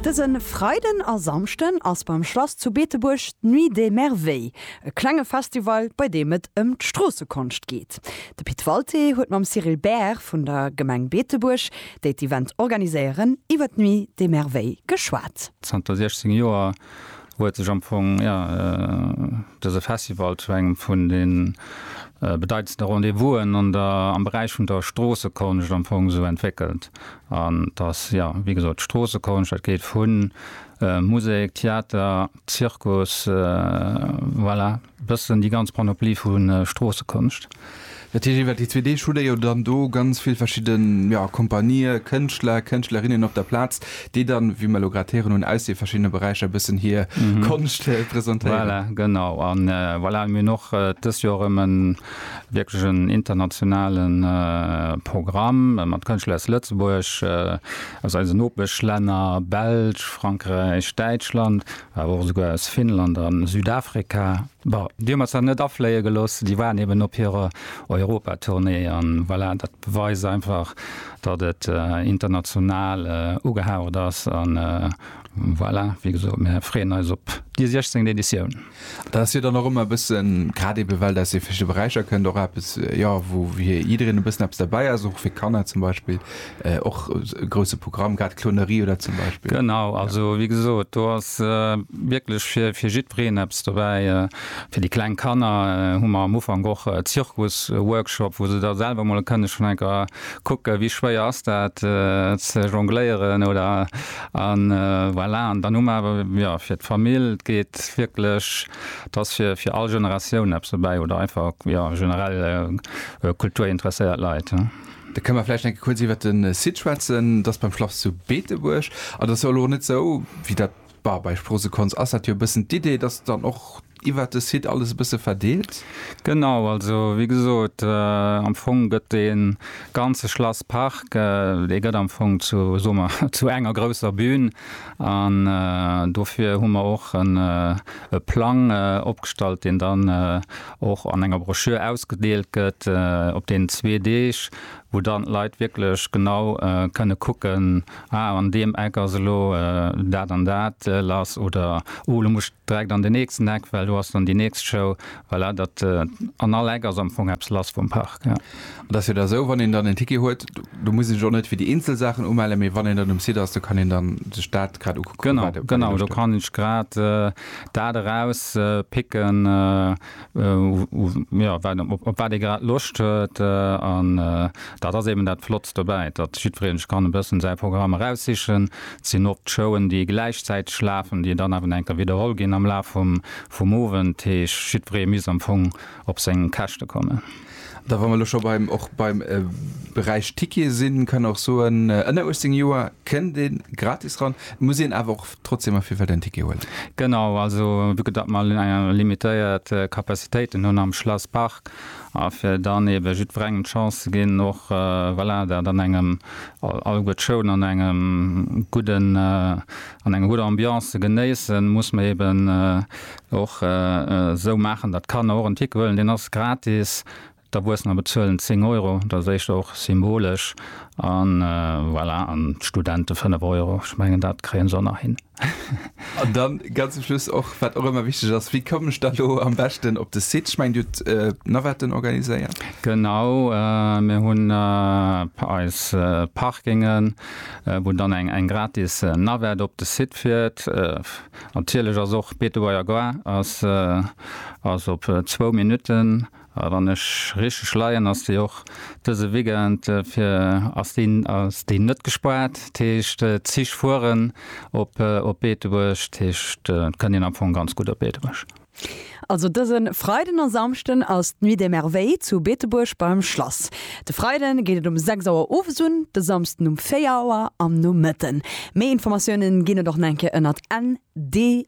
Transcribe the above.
Dëse Freiden a Samschden ass beim Schlass zu Beetebuerg d'Nuit des Merveilles, e klenge Festival, bei deem et ëm d'Stroossekonscht geet. De Pit Walté huet mam Cyrille Baer vun der Gemeng Beetebuerg, déi d'Event organiséieren, iwwer d'Nuit des Merveilles geschwat. Zanter 16 Joer huet sech am Fong dëse Festival zu engem vun de bedeitendste Rendez-vousen am Beräich vun der Stroossekonscht am Fong esou entwéckelt. An dass, jo, wéi gesot, d'Stroossekunscht, dat geet vu Musek, Theater, Zirkus, voilà, e bëssen déi ganz Panoplie vu Stroossekunscht. Dat heescht, iwwer déi zwee Deeg hutt Der jo dann do ganz vill verschidde, jo, Kompanië, Kënschtler, Kënschtlerinnen op der Plaz, déi dann, wéi mer elo grad héieren hunn, aus de verschiddene Beräicher e bëssen hir Konscht presentéieren. Voilà, genau. A voilà, mir hunn och dëst Joer erëm en. wierklech en internationale Programm mat Kënschtler aus Lëtzebuerg, aus eisen Nopeschlänner, Belsch, Frankräich, Däitschland, awer och esouguer aus Finnland a Südafrika. Bon, déi hu mer zwar net afléie gelooss, déi waren eben op hirer Europatournée. An voilà, dat beweist einfach, datt et international ugehaucht ass. An voilà, wéi gesot, mir freeën eis op déi 16. Editioun. Dat ass jo dann och ëmmer e bëssen, grad ebe well dat aus de verschiddene Beräicher kënnt, och eppes, jo, wou fir jiddereen e bëssen eppes derbäi ass, och fir Kanner zum Beispill, och e grousse Programm, grad Clownerie oder zum Beispill. Genau, also wéi gesot, do ass wierklech fir fir jiddwereen eppes dobäi. Fir déi kleng Kanner hu mer am Ufank och e Zirkusworkshop, wou se da selwer mol kënne schonn enker kucke wéi schwéier ass dat ze jongléieren oder An voilà, an dann hu mer awer, jo, fir d'Famill, et geet wierklech, et ass fir, fir all Generatioun eppes dobäi oder einfach, jo, generell kulturinteresséiert Leit. Da kënne mer vläicht eng Kéier kuerz iwwert de Site schwätzen. Et ass beim Schlass zu Beetebuerg an et ass jo elo net esou, wéi dat, bah, bei Sproosekons ass dat jo e bëssen d'Idee, dass dann och. Iwwert de Site alles e bësse verdeelt? Genau, also wéi gesot, am Fong gëtt dee ganze Schlasspark, dee gëtt am Fong zu, soe mer, zu enger grousser Bühn. An dofir hu mer och e Plang opgestallt, deen dann och an enger Broschür ausgedeelt gëtt op deenen zwee Deeg, wou dann d'Leit wierklech genau kënne kucken, ah an deem Eck ass elo dat an dat lass oder oh elo muss Direkt an den nächsten Eck, well do ass dann déi nächst Show. Voilà, dat, an all Eck ass am Fong eppes lass vum Park, ja. Et ass jo da sou, wann een dann en Ticket huet, do muss een sech och net fir déi eenzel Saachen umellen, mee wann een dann um Site ass, do kann een dann sech dat grad ukucken, wat ee loscht huet. Genau, genau, do kann ech grad dat eraus picken. jo, wat, op wat ee grad Loscht huet. An dat ass eeben dat Flottst dobäi, datt jiddweree sech kann e bëssen säi Programm eraussichen. Et sinn oft Showen, déi gläichzäiteg lafen, déi dann awer eng Kéier widderholl ginn am Laf vum, vum Owend. Heescht, jiddweree misst am Fong op seng Käschte kommen. Da wa mer elo scho beim, och beim Beräich Tickete sinn, kann ee och soen, ënner 18 Joer kënnt ee gratis ran, muss een awer och. trotzdem a Firfeld en Ticket huelen. Genau, also vu que datt mer limitéiert Capacitéiten hunn am Schlasspark a fir dann ebe jiddwerengem d'Chance ze ginn och, voilà, dat an engem, alleguer d'Showen an engem gudden, an enger gudder Ambiance ze genéissen, muss mer eben och esou maachen, datt d'Kanner och en Ticket huelen. Deen ass gratis. D'Erwuessener bezuelen 10 Euro, dat ass éischter och symbolesch, a voilà, an d'Studente 5 Euro. Ech mengen, dat kréien se och nach hin. An dann ganz zum Schluss och, wat och ëmmer wichteg ass, Wéi kommen ech dann elo am beschten op de Site? Ech mengen, Dir hutt d'Navetten organiséiert. Genau, mir hunn eis Parkingen, wou dann eng gratis Navette op de Site fiert. Natierlech ass och Betebuerger Gare ass op zwou Minutten. A wann ech richteg leien ass déi och dëse Weekend fir ass déi net gespaart. Dat heescht d'Zich fueren op Beetebuerg. Dat heescht et kënnt een am Fong ganz gutt op Beetebuerg. Also dëse Freiden a Samschden ass d'Nuit des Merveilles zu Beetebuerg beim Schlass. De Freide geet et um 6 Auer owes un, de Samsden um 4 Auer am Nomëtten. Méi Informatiounen ginn et och nach eng Kéier ënnert ndm.lu.